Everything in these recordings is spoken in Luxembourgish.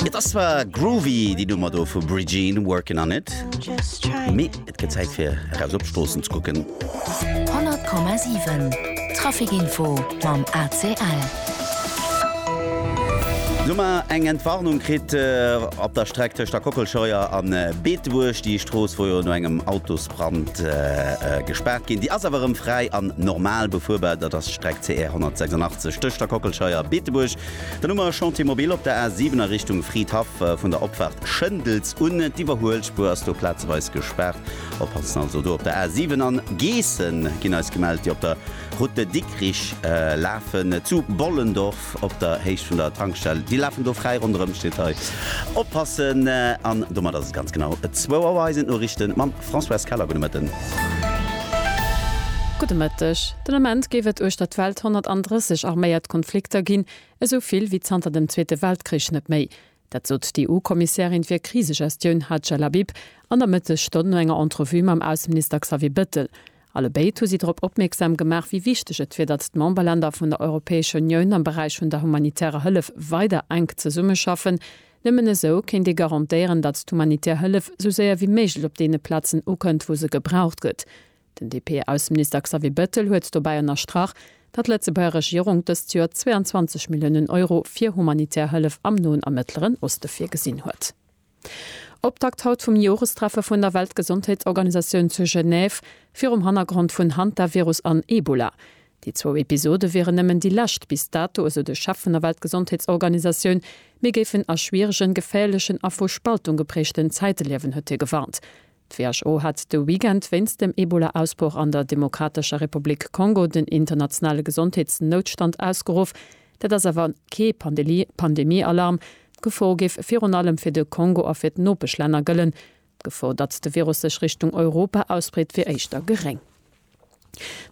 Et ass zwar groovy déi Nummer do vu Bridgeen workin on it, mee et gëtt Zäit fir eraus op d'Stroossen ze kucken. 100,7 Trafikinfo mam ACL. Hu mer eng Entwarnung kritt op der Streck tëscht der Kockelscheuer a Beetebuerg. Déi Strooss wor jo no engem Autosbrand gespaart ginn. Déi ass awer erëm fräi an normal befuerbar. Dat ass d'Streck CR 186 tëscht der Kockelscheuer a Beetebuerg. Den Noumer Chantier Mobile op der A 7 a Richtung Fridhaff, vun der Opfaart Schëndels un. D'Iwwerhuelspuer ass do plazeweis gespaart. Oppassen also do op der A 7. An Geessen ginn eis gemellt, déi op der Route de Dikrich lafen, zu Bollendorf op der Héicht vun der Tankstell. Déi lafen do fräi ronderëm, steet hei. Oppassen! An domat ass et ganz genau zwou Auer. Hei sinn d'Noriichte mam Françoise Keller. Gudde Mëtten. Gudde Mëtteg. Den Ament géif et uechter d'Welt 130 arméiert Konflikter ginn, esou vill wéi zanter dem Zweete Weltkrich net méi. Dat sot d'EU-Kommissärin fir Krisegestioun Hadja Labib an der Mëttesstonn no enger Entrevue mam Ausseminister Xavier Bettel. Alle béid hu si drop opmierksam gemaach, wéi wichteg et wier, datt d'Memberlänner vun der Europäescher Unioun am Beräich vun der humanitärer Hëllef weider enk zesummeschaffen. Nëmmen esou kéint ee garantéieren, datt d'humanitär Hëllef esou séier wéi méiglech op deene Plazen ukënnt, wou se gebraucht gëtt. Den DP-Ausseminister Xavier Bettel huet dobäi ënnerstrach, datt d'Lëtzebuerger Regierung dëst Joer 22 Milliounen Euro fir humanitär Hëllef am Noen a Mëttleren Oste virgesinn huet. Optakt haut vum Jorestreffe vun der Weltgesondheetsorganisatioun zu Genève virum Hannergrond vun Hantavirus an Ebola. Déi zwou Episode wieren nëmmen déi lescht bis dato, esou de Chef vun der Weltgesondheetsorganisatioun. Mir géifen a schwieregen, geféierlechen a vu Spaltung gepräegten Zäite liewen, huet hie gewarnt. D'WHO hat de Weekend wéinst dem Ebola-Ausbroch an der Demokratescher Republik Kongo den internationale Gesondheetsnoutstand ausgeruff. Dat ass awer kee Pandemie-Alarm. D'Gefor géif virun allem fir de Kongo a fir d'Nopeschlänner gëllen. D'Gefor, datt de Virus sech Richtung Europa ausbreet, wier éischter geréng.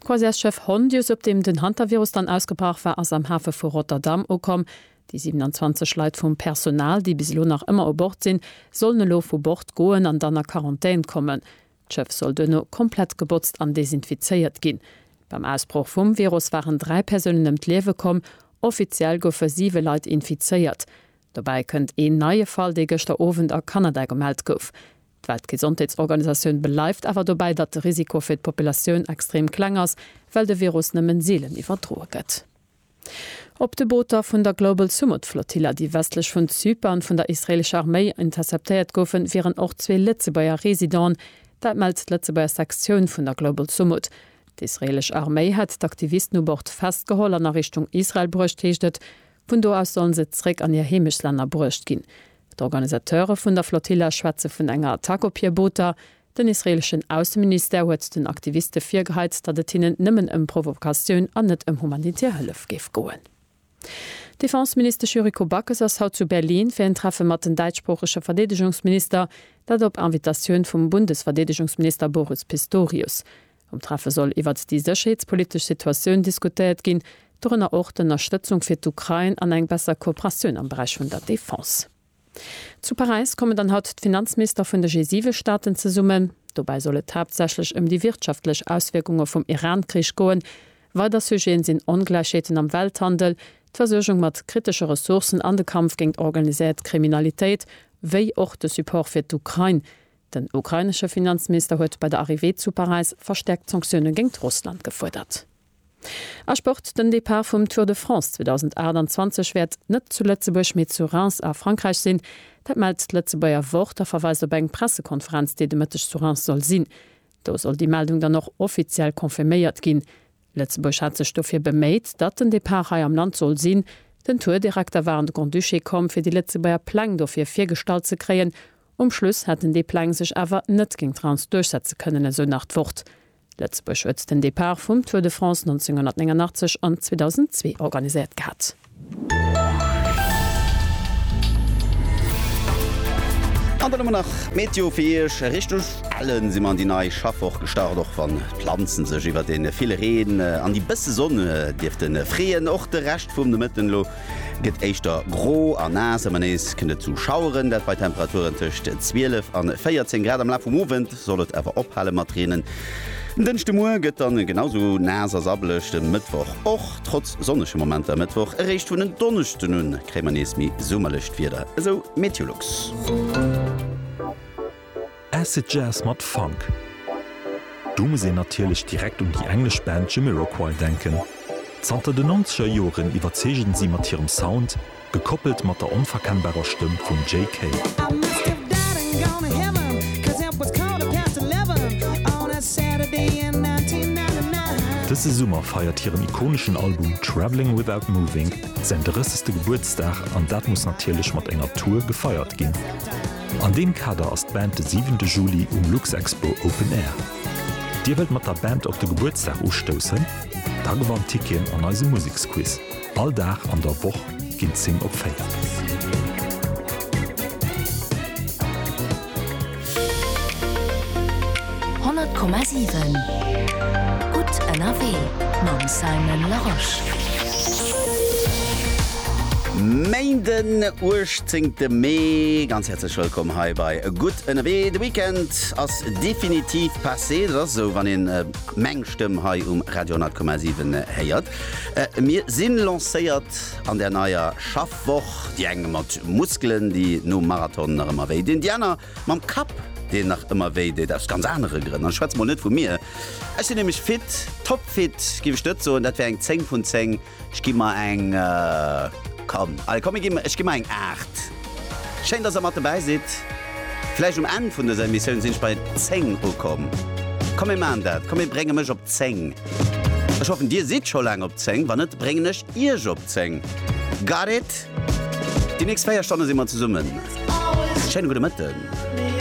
D'Croisièresschëff Hondius, op deem den Hantavirus dann ausgebrach war, ass am Hafe vu Rotterdam ukomm. Déi 27 Leit vum Personal, déi bis elo nach ëmmer u Bord sinn, sollen elo vu Bord goen an dann a Quarantän kommen. D'Schëff soll duerno komplett gebotzt an desinfizéiert ginn. Beim Ausbroch vum Virus waren dräi Persounen ëm d'Liewe komm. Offiziell goufe siwe Leit infizéiert. Dobäi kënnt een neie Fall, dee gëschter Owend a Kanada gemellt gouf. D'Weltgesondheetsorganisatioun bleift awer dobäi, datt de Risiko fir d'Populatioun extrem kleng ass, well de Virus nëmmen seelen iwwerdroe gëtt. Op de Booter vun der Global Sumud Flotilla, déi westlech vun Zypern vun der israeelescher Arméi interceptéiert goufen, wieren och zwee Lëtzebuerger Residenten. Dat mellt d'Lëtzebuerger Sektioun vun der Global Sumud. D'israeelesch Arméi hätt d'Aktivisten u Bord festgeholl an a Richtung Israel bruecht, heescht et Vun do aus sollen se zréck an hir Heemechtslänner bruecht ginn. D'Organisateure vun der Flotilla schwätze vun enger Attack op hir Booter. Den israeeleschen Ausseministère huet den Aktiviste virgeheit, datt et hinnen nëmmen ëm Provokatioun an net ëm humanitär Hëllef géif goen. D'Defenseministesch Yuriko Backes ass haut zu Berlin fir en Treffe mat den däitschsproochege Verdeedegungsminister, dat op Invitatioun vum Bundesverdeedegungsminister Boris Pistorius. Um Treffe soll iwwert déi sécherheetspolitesch Situatioun diskutéiert ginn, dorënner och d'Ënnerstëtzung fir d'Ukrain an eng besser Kooperatioun am Beräich vun der Defense. Zu Paräis kommen dann haut d'Finanzminister vun de G7-Staaten zesummen. Dobäi soll et haaptsächlech ëm déi wirtschaftlech Auswierkunge vum Iran-Krich goen. Weider Sujeten sinn Ongläichheeten am Welthandel, d'Versuergung mat kritesche Ressourcen an de Kampf géint organiséiert Kriminalitéit, wéi och de Support fir d'Ukrain. Den ukrainesche Finanzminister huet bei der Arrivée zu Paräis verstäerkt Sanktioune géingt Russland gefuerdert. A Sport, Den Depart vum Tour de France 2028 wäert net zu Lëtzebuerg, mee zu Reims a Frankräich sinn. Dat mellt d'Lëtzebuerger Wort a verweist op eng Pressekonferenz, déi de Mëtteg zu Reims soll sinn. Do soll déi Meldung dann och offiziell confirméiert ginn. Lëtzebuerg hat sech dofir beméit, datt den Depart hei am Land soll sinn. Den Tourdirekter war an de Grand-Duché komm, fir déi Lëtzebuerger Pläng dofir virgestallt ze kréien. Um Schluss hätten déi Pläng sech awer net géint d'Rance duerchsetze kënnen, esou nach d'Wort. Lëtzebuerg huet den Depart vum Tour de France 1989 an 2002 organiséiert gehat. An dann hu mer nach d'Meteo fir Iech. Richteg ellen si mer an déi nei Schaffwoch gestart, och wann d'Planzen sech iwwer de ville Reen an déi bësse Sonn dierfte freeën. Och de Rescht vum Nomëtten elo gëtt éischter gro a naass, ëmmer nees kënnt et zu Schaueren, dat bei Temperaturen tëscht 12 an 14 Grad. Am Laf vum Owend. Soll et awer ophale mat reenen en Dënschdemuer, gëtt dann genau sou naass a sabbeleg de Mëttwoch och. Trotz sonnege Momenter e Mëttwoch, eréischt vun en Donneschden un kréie mer nees méi summerlecht Wieder, esou Meteolux. Acid Jazz mat Funk, do muss een natierlech direkt un déi englesch Band Jamiroquai denken. Zanter den Nonzeger Joren iwwerzeegen si mat hirem Sound Gekoppelt mat der onverkennbarer Stëmm vum Jay Kay. Dëse Summer feiert hiren ikoneschen Album Travelling Without Moving säin 30. Gebuertsdag an dat muss natierlech mat enger Tour gefeiert ginn. An deem Kader ass d'Band de 7 de Juli um Luxexpo Open Air. Dir wëllt mat der Band op de Gebuertsdag ustoussen? Da gewannt Ticketen an eisem Museksquiz. All Dag an der Woch ginn d'Zing op 4. Honnert Komma siwen, gutt ënnerwee mam Simon Larosche. Main den 18 te Mee, ganz häerzlech wëllkomm hei bei Gutt ënnerwee. De Weekend ass definitiv passé, dat ass esou wann een meng Stëmm hei um Radio 100,7 héiert. Mir sinn lancéiert an der neier Schaffwoch, déi eng mat Muskelen, déi nom Marathon nach ëmmer wéi dinn, déi aner mam Kapp, deen nach ëmmer wéi deet, aus ganz anere Grënn. An ech schwätze mol net vu mir, ech sinn nämlech fit, topfit géif ech net soen, dat wär eng 10 vun 10, ech gi mer eng, kann, allez komm ech gi mer eng 8. Schéin dass der mat dobäi sidd. Vläicht um Enn vun dëser Emissioun sinn ech bei 10 ukomm. Komm mir maachen dat. Komm mir brénge mech op 10. Ech hoffen dir sidd scho laang op 10. Wann net bréngen ech iech op 10. Got it? Déi nächst 4 Stonne si mer zesummen. Schéine gudde Mëtten.